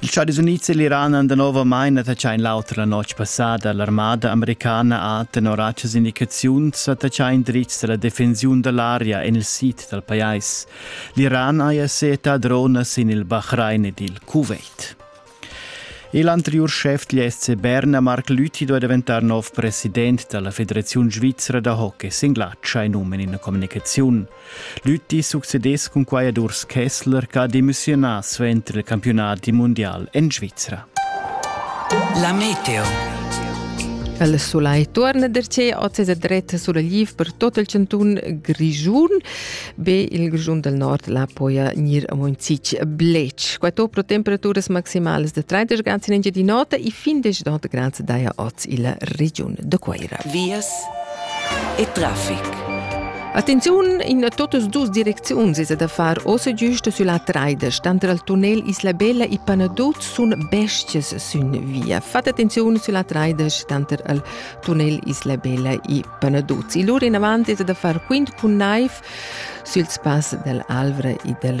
Ils Stadis Unids e l'Iran han danovamain attaccà in l'auter la notg passada. L'armada americana ha, tenor actas indicaziuns, attaccà in dritg da la defensiun da l'aria en il sid dal pajais. L'Iran haja seta dronas sin il Bahrain ed il Kuwait. L'anteriur schef degl SC Berna, Marc Lüthi, doveva diventare nov president della Federazione Svizzera da hockey. Singlatscha in umen in communicazione. Lütti succedess cun quai ad Urs Kessler ch'ha demissiunà suenter il campiunadi mundial en Svizra. La meteo. Il sulai torna da che oz è dret sur il per tot il cantun Grischun. Be il Grischun del Nord la poia nir a Monzic Blec. Quato pro temperaturas maximales de 30 grads in Engia di notte e fin 19 grads daia oz il Region de Coira. Vias e traffic. Attenziun, in da totas dus direcziuns es da far ossa giusta sülla traides, tanter al tunnel Isla Bella e Panaduz sun bestias sün via. Fat attenziun sülla traides tanter al tunnel Isla Bella e Panaduz. E lur inavant es da far quint cun naiv süls pass dell Alvra e dell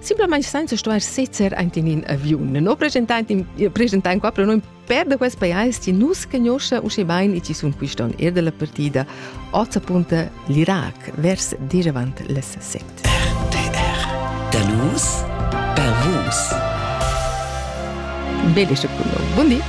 simplamain senza stuair sezer aint in in aviun. No presentaint, presentaint qua per noi per da quest pajais chi nus conosce usche bain e chi sun quiston er della partida Ozapunta l'Irac vers diravant les set. RTR Da nus per vus. Belle Buondì.